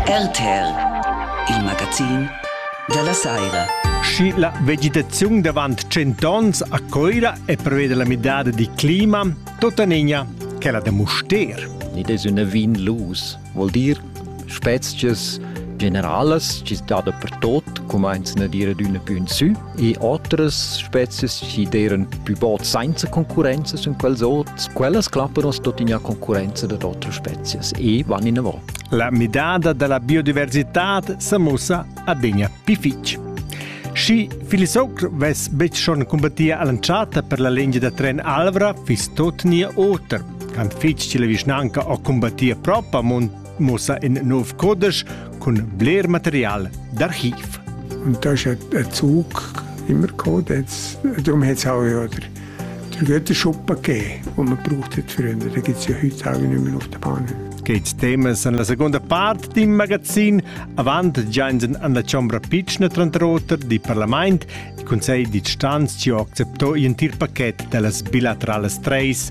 RTL, il magazin dalla saira. Schi la vegetaziun davant cent'onns a Coira e prevede la midada di clima, tota nigna quella da Muster. Id es üna vin lus, vuol dir spezias generalas chi dà dapertot, cumainzan a dire d'üna pü in sü, e otras spezias chi d'eiran pü bod sainza concurrenza sun quels ots, quellas clappan oss tuttina concurrenza dad otras spezias e van inavò. La midada da la biodiversità s'ha mussa adegna pü fich. Schi Filisocr vess betg schon combattia all'entschatta per la lingia da tren Alvra, fiss tot nia oter. Quant fitg che la vischnanca ha combattia propa, mon muossa in nov codesch cun bler material d'archiv. Das ist ein Zug immer gekommen. Darum hat es auch ja der, der Güterschuppe gegeben, den man braucht hat früher. Den gibt es ja heute auch nicht mehr auf der Bahn. Geht Themen sind la seconda parte del magazin avant giansen an la chombra piccina tranter di parlament il consiglio di istanza ci ha acceptato il pacchetto delle bilaterali treis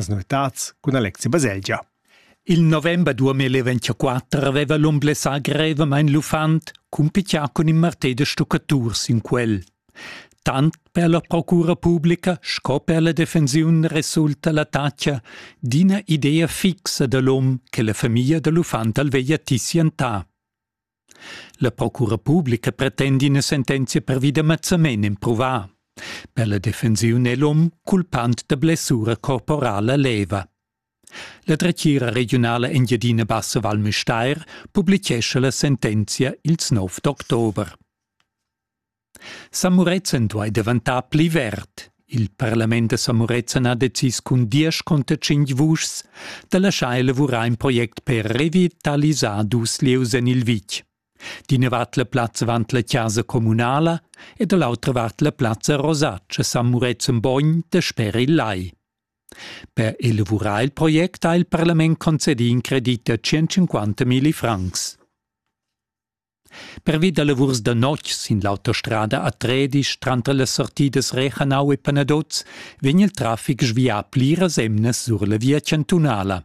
Las novitads cun Alexi Baselgia. Il november 2024 aveva l'um blessà grevamain l'uffant, cumpitià cun in martè da stuccaturs in quel. Tant per la procura publica sco per la defensiun resulta l'attacca d'ina idea fixa da l'um che la famiglia da l'uffant al veglia tissientà. La procura publica pretend ina sentenzia pervi da mazzament empruvà. Per la defensiun è l'um culpant da blessura corporala leva. La dretgira regiunala Engiadina Bassa Val Müstair publichescha la sentenzia ils 9 d'october. San Murezzan duai daventar pli verd. Il parlament da San Murezzan ha decis cun diesch conter tschintg vuschs da laschar elavurar in project per revitalisar dus lieus en il vitg. D'ina vart la plazza avant la chasa communala e da l'autra vart la plazza Rosace San Murezzan Bogn dasper il lai. Per elavurar il project ha il parlament concedì in credit da 150 milli francs. Pervi da lavurs da notg sin l'autostrada a Tredisch tranter las sortidas Rechanau e Panaduz vegn il traffic svià pliras emnas sur la via chantunala.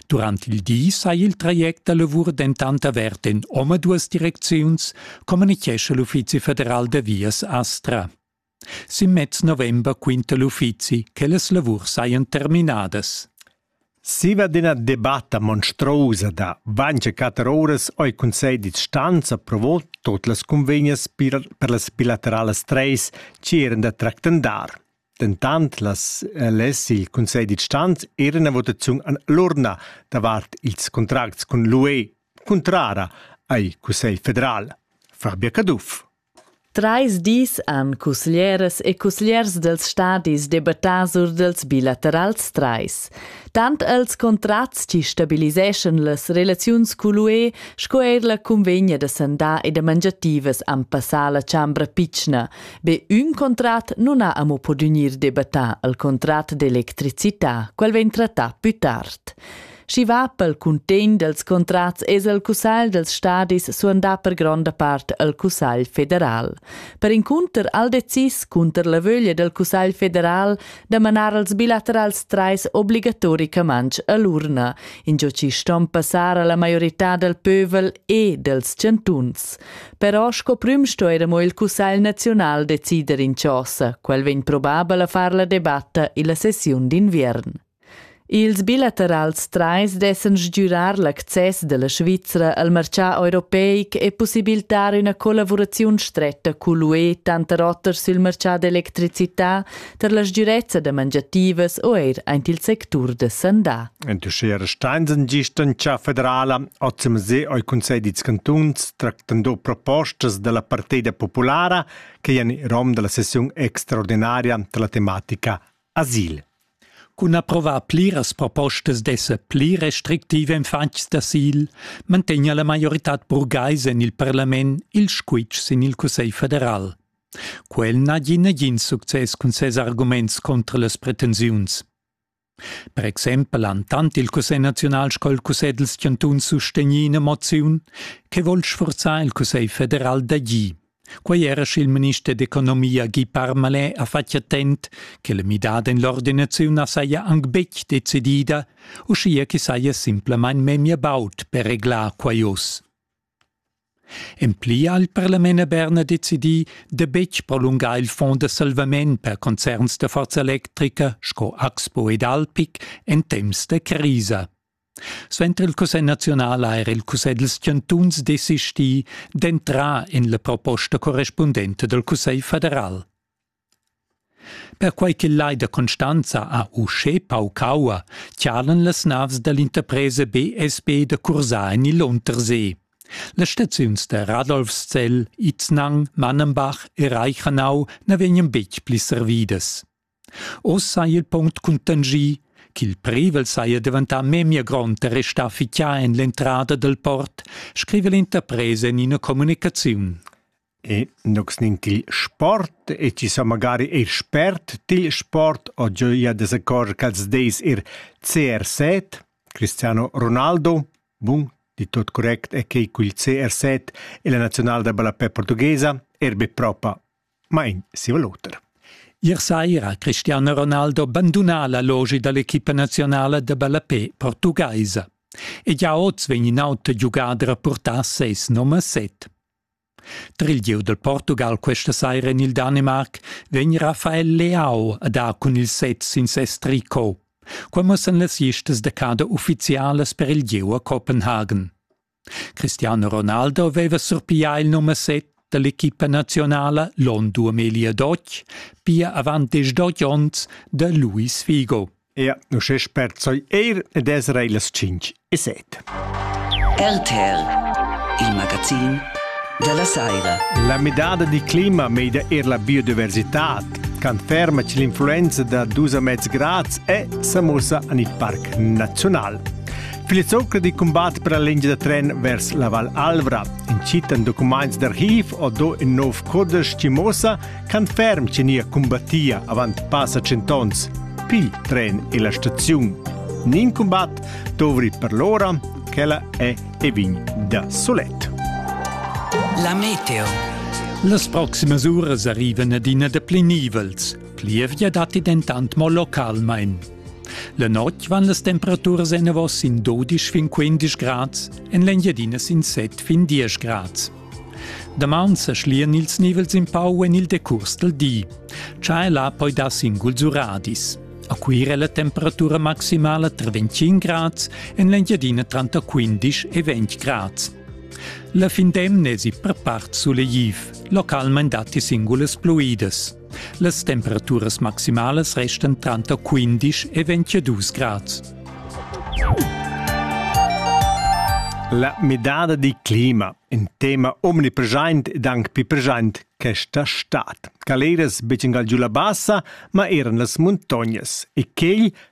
Durant il di sai il traject da lavur dentant avert en omaduas direcziuns, communitgescha l'Uffizi federal da vias Astra. Sin mez november quinta l'uffizi che las lavurs sajan terminadas. Siva d'ina debatta monstruosa da vainch e quatter ouras ho il Cunsegl d'instanza provò tot las cunvegnas per, per las bilateralas treis chi eran da tractandar. Dentant las, eh, less il Cunsegl d'instanza er una votaziun an l'urna davart ils contracts cun l'UE, cuntrara ai Cussegl federal. Fabia Caduff. Trais dis han cusglieras e cusgliers dals stadis debattà sur dals bilaterals trais. Tant els contrats chi stabiliseschan las relaziuns cul UE sco eir la cunvegna da sandà e da mangiativas han passà la chambra pitschna. Be ün contrat nun ha amo po gnir debattà, il contrat d'electricità. Quel vegn trattà plü tard. Schi va pel cuntegn dels contrats es el cussagl dels stadis suandà per gronda part el cussagl federal. Per incunter al decis cunter la vöglia del cussagl federal da manar als bilaterals trais obligatoricaments a l'urna, ingio chi ston passar alla maiorità del pövel e dels chantuns. Però sco prüm sto eir amo il cussagl nazional decider in chosa, quel vegn probabel a far la debatta illa sessiun d'inviern. Ils bilaterals trais dessan stgürar l'access da la Svizra al marchà europeic e pussibiltar üna collavuraziun stretta cull'UE tanter oter sül marchà d'electricità tar la sgürezza da mangiativas o eir aint il sectur da sandà. Entuschera Steinsen gist in cha federala hoz il musei al Cunsegl dals cantuns tractan do propostas da la partida populara che jan in rom da la sessiun extraordinaria da la tematica Asil. Cun approvar pliras propostas d'esser pli restrictiv en fatgs d'asil mantegna la maioritad burgaisa en il parlament il squitsch sin il Cussegl federal. Quel n'ha gì nagin success cun ses arguments contra las pretensiuns. Per exempel han tant il Cussegl naziunal sco il Cussegl dals chantuns sustegnì ina moziun che vul sforzar il Cussegl federal d'agir. Quei era sch'il minister d'economia Guy Parmalin ha fatg attent che la midada en l'ordinaziun saja aunc betg decidida, uschia che saja simplamain memia baud per reglar quai oz. En pli ha il parlament a Berna decidì da betg prolungar il fond da salvament per concerns da forza electrica sco Axpo ed Alpic en temps da crisa. Suenter il cussegl naziunal ha era il cussegl dals chantuns desistì d'entrar en la proposta correspundenta dal cussegl federal. Perquai ch'il lai da Constanza ha uschè pauc aua, chalan las navs da l'interpresa BSB da cursar en il Untersee. Las staziuns da Radolfszell, Iznang, Mannenbach e Reichanau na vegnan betg pli servidas. Oz saja il punct cuntanschì ch'il privel saja daventà memia grond e restà fixà en l'entrada dal port, scriva l'interpresa en ina communicaziun. E nox nin til sport e ci sa magari eir spert til sport o gioia de secor ch'als deis ir CR7, Cristiano Ronaldo, bun, di tot correct e quei cul CR7 e la nazional da ballapè portughesa, erbe propa Mein ziel oter. Ier saira Cristiano Ronaldo banduna la logi dall'equipa nazionala da ballapé portugaisa. E già oz vegn in auter giugader a purtar ses num a set. Tra il gieu del Portugal questa saira en il Danimark vegn Rafael Leao a dar cun il set sin ses tricot. Quai mussan las listas da cada uffizialas per il gieu a Copenhagen. Cristiano Ronaldo veva surpiglià il numer 7 dall'equipa nazionala l'onn 2012, pia avant diesch onns da Luis Figo. Ja, uschè sperzoi eir ed es rei las 5 e 7. RTL, il magazin della Saira. La medada di clima meida er la biodiversità conferma che l'influenza da dus mezz grads è sa mossa en il parc nazional. Filizzoca di combat per la lingia da tren vers la Val Alvra. Incitan documents d'archiv o do in nov codesch che mossa can ferm che nia combattia avant passa centons. Pil tren e la staziun. Nin combat dovri per l'ora, quella è e vin da solet. La meteo. Las proximas uras arrivan adina da pli nivels. Plievgia datti dentant mo localmain. La notg van las temperaturas enavos in 12 fin 15 grads, en l'Engiadina sin 7 fin 10 grads. Damaun sa schlian ils nivels in pau en il decurs del di. C'è là poi da singul zuradis. A Cuira è la temperatura maximala tra 25 grads, en l'Engiadina tra 15 e 20 grads. La fin d'emna è per part solegliv, localmente datti singulas pluidas. Las temperaturas maximalas restan tranter 15 e 22 grad. La midada di clima, in tema omnipresent ed anche più present questa stad. Galeras becen giù la bassa, ma eran las montognas e quegl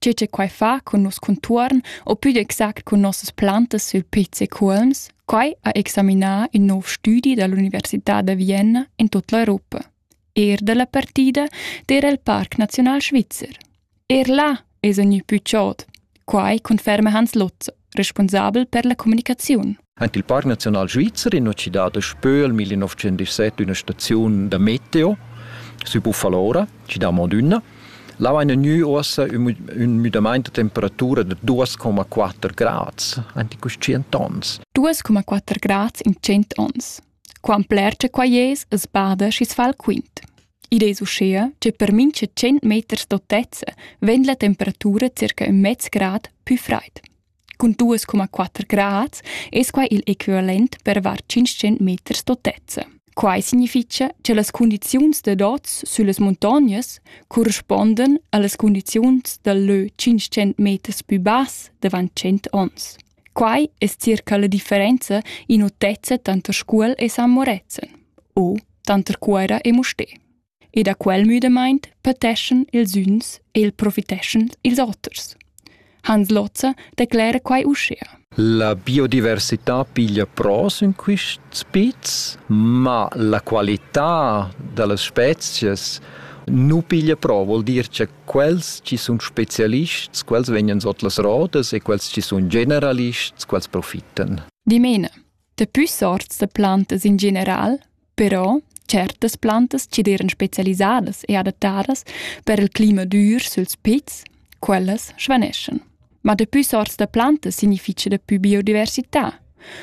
tgei che quei fa cun nos contuorn o pü exact cun nossas plantas sul Piz e Cuolms? Quai ha examinà il nov studi dall'Università da Vienna in tutta l'Europa. Er dalla partida d'era il Parc Nazional Svizzer. Er là es gnü pü chod. Quai conferma Hans Lotz, responsabel per la comunicaziun. Ant il Parc Naziunal Svizzer in cidade Spöl 1917 üna staziun da meteo sü Buffalora, cidà Modünna. Là vaina gnü uossa ün müdamaint da temperatura da 2,4 grads, anti cust 100 ons. 2,4 grads in 100 ons. Quam pler che quai es, es bada schi's fa'l quint. Id es uschea che per mincha 100 meters d'autezza vegn la temperatura circa ün mez grad pü fraid. Cun duas coma quatter grads es quai il equivalent per var 500 meters d'otezza. Quai significha che las cundiziuns dad oz süllas muntognas correspondan a las cundiziuns dal lö 500 meters pü bass davant 100 ons. Quai es circa la differenza in otezza tanter Scuol e San Moretzen o tanter Cuera e Mustè. e da quel müdamaint pateschan ils üns e il profiteschan ils oters. Hans Lozza declera quai uschea. La biodiversità piglia pros in quists pizs, ma la qualità da las spezias nu piglia pro, vuol dir che quels chi sun specialists, quels vegnan sot las rodas e quels chi sun generalists, quels profittan. Dimene, da pü sorts da plantas in general Però certas plantas cederan specialisadas e adattadas per il clima dur süls pizs, quellas svaneschan. Ma dapü sorts da plantas significha dapü biodiversità.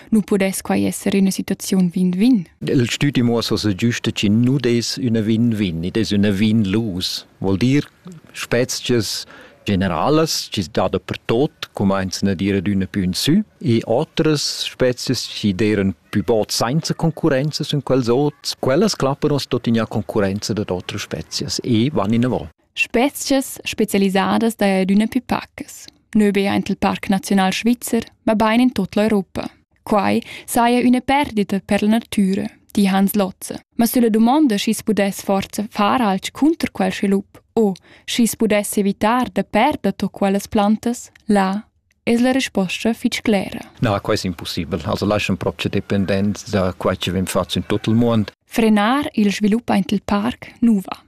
Nu pudess quai esser üna situaziun win-win? Il stüti muossa so giusta chi nu des üna win-win, id es üna win-lose. Vuol dir, spezchas generalas chi's dada pertot cumainzan ad ir adüna pü in sü e otras spezias chi d'eiran pü bod sainza concurrenza sun quels ot. Quellas clappan as tuttina a concurrenza dad otras spezias e van inavo. Spezias specialisadas daja adüna pü pacas. Nö be aint il Parc Naziunal Svizzer, ma bain in tot l'Europa. Quai saja üna perdita per la natüra, di Hans Lotze. Ma sulla dumonda schi's pudess forza far alch cunter quel svilup o schi's pudess evitar da perder to quellas plantas, là es la resposta fich clera. Na, quai es impussibel. Also laschan propcha dependents da quai chi vegn fat in tot il muond. Frenar il svilup aint il parc nouva.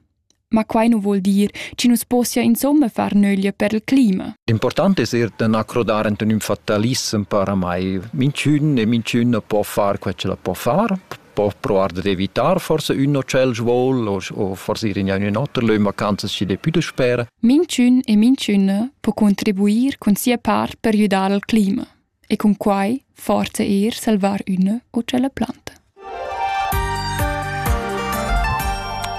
Ma quai nu vuol dir chi nu's possia insomma far nöglia per il clima. Important es eir da na crodar ant ün fatalissem per amai. Minchün e minchün po far quel ch'el po far, po provar d'evitar forse ün o tschel svoul o, o forse ir in ün oter lö vacanzas chi depü da spera. Minchün e minchüna po contribuir cun sia part per güdar al clima. e cun quai forza eir salvar üna o tschella planta.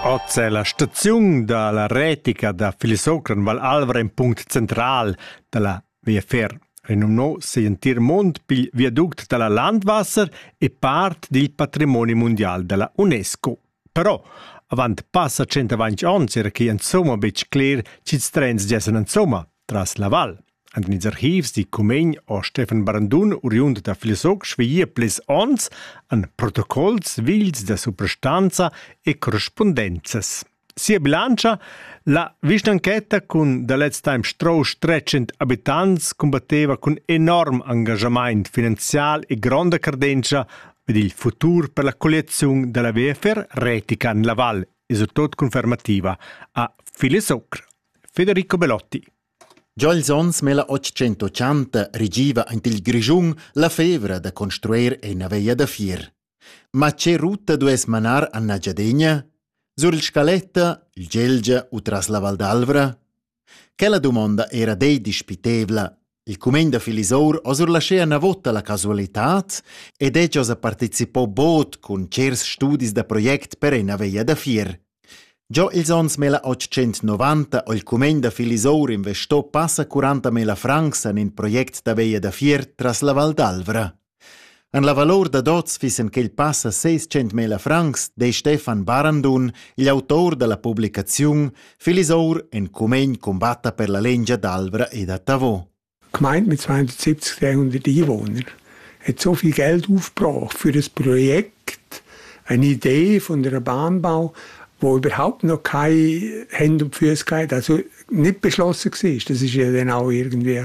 Oz è la staziun da la retica da Filisocran Val Alvra in punct central da la VFR, renumnò si entir mond pil viaduct da la Landwasser e part dil patrimoni mundial da la UNESCO. Però avant passa tschentavantg onns era quai insumma betg cler ch'ils trens giessan insumma tras la val. En ils archivs di Cumegn o Stefan Brandun, oriund da Filesoc, svigia plis onns en protocols vils da suprastanza e correspondenzas. Sia bilantscha, la vischnanchetta cun da lez temp strauss 300 abitants combatteva cun enorm engagament finanzial e gronda cardentscha Per il futur per la colliaziun dalla VFR retica la val e surtot confermativa a Filesoc. Federico Belotti. Già ils onns 1880 regiva ant il Grischun la fevra da construir ena veia da fier. Ma che ruta dues manar a Nagyadegna? Sur il Scaletta, il Gelgia u tras la Val d'Alvra? Quella dumonda era dei dispitevla. Il cumegn da Filisour ha surlaschea una vota la casualitad ed ella ha participò bod cun cers studis da project per ena veia da fier. Giò ils ans mela 890 ho il cumegn da Filisour investò passa 40 mila francs en in project da veia da fier tras la Val d'Alvra. En la valor dad oz fissen quei passa seis centmila francs, de Stefan Barandun, igl autor dalla publicaziun Filisour en cumegn combatta per la lengia d'Alvra e da Tavò. Gemeint mit 270 Einwohnern hat so viel Geld aufgebracht für das Projekt, eine Idee von der Bahnbau, wo überhaupt noch keine Hände und Füße gab, also nicht beschlossen war. Das ist ja dann auch irgendwie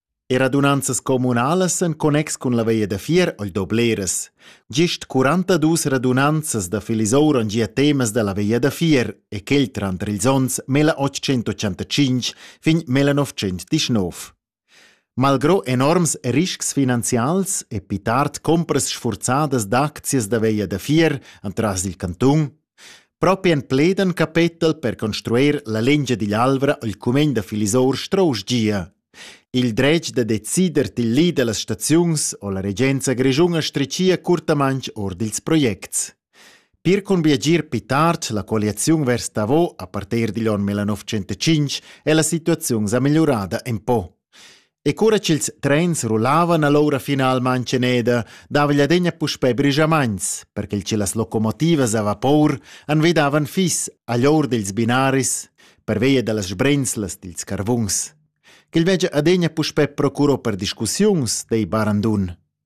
E radunanzas communalas en connex cun la veia da fier ei do bleras. Gist 42 radunanzas da Filisoura han gia temas dalla veia da fier e quel tranter ils onns 1885 fin 1919. Malgrò enorms riscs finanzials e pli tard compras sfurzadas d'aczias da veia da fier entras il cantun Propi en pledan capetel per construir la lingia digl Alvra ha il cumegn da Filisor strau gia. Il dretg da decider dil li dallas staziuns ha la regenza grischuna stritgia curtamanc ord ils projects. Pir cun biagir pli tard la colliaziun vers Davos a partir digl onn 1905 è la situaziun sa migliurada en po. E cura ch'ils trens rullavan ha l'aura finalmain tscheneda, dava l'adegna puspè brigiamaints, per che las locomotivas a vapor envidavan fis agl or dils binaris pervia dallas sbrenzlas dils carvuns. Quel veggia adegna puspè procuro per discussiuns, dei barandun.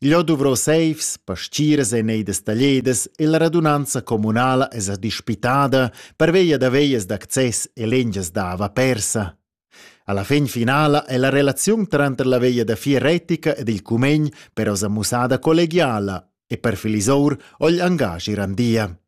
Igl ho duvrau seifs, pastiras e neidas tagliadas e la radunanza communala esa dispitada pervia da veglias d'access e lengias dava persa. Alla fin finala è la relaziun tranter la veglia da fier retica ed il cumegn però sa mussada collegiala e per Filisour ogl angaschi randia.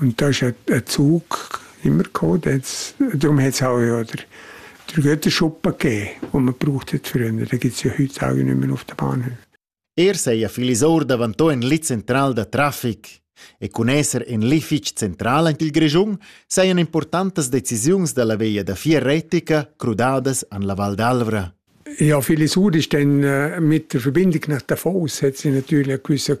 Und das hat einen Zug immer gehabt. Darum hat es auch ja der, der Göttenschuppen gegeben, den man brauchte früher. Den gibt es ja heute auch nicht mehr auf den Bahnhöfen. Er sei ein Filisor davantò in li central da traffic e cun esser in li fitg central en il Grischun sajan importantas decisiuns da la via da vier retica crudadas an la Val d'Alvra. Ja, Filisur ist dann äh, mit der Verbindung nach Davos hat sie natürlich eine gewisse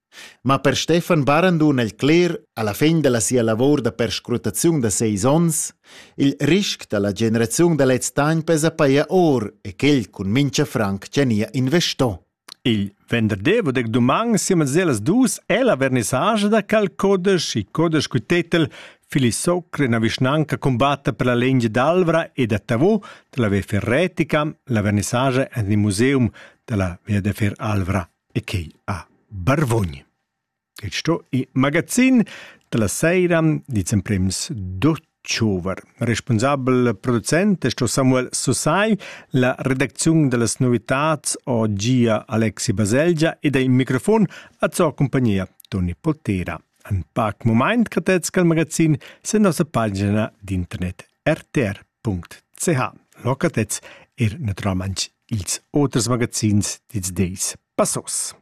Ma per Stefan Barandun el cler, alla fin dalla sia lavor da perscrutaziun da seis ons, il risc dalla generaziun da lez temps pesa paia or e quel cun mincha franc tgania investo. Il venderdi vod ec dumang siemens ellas dus è la vernissage da cal codesch i codesch cul tetel Filisocre na vischnanca combatta per la legge d'Alvra e da Tavò della Via Ferretica, la vernissage en il museum della Via de Fer Alvra. e quei a Barvogn. Il sto i magazin da la seira dits emprems d'october. Responsabel producent è sto Samuel Susai, la redacziun da las novitats ho gia Alexi Baselgia ed ai microfon a zo compagnia Toni Poltera. An pac moment catets cal magazin sen nossa pagina d'internet rtr.ch. Locatets er naturalmaing ils oters magazins dils deis passos.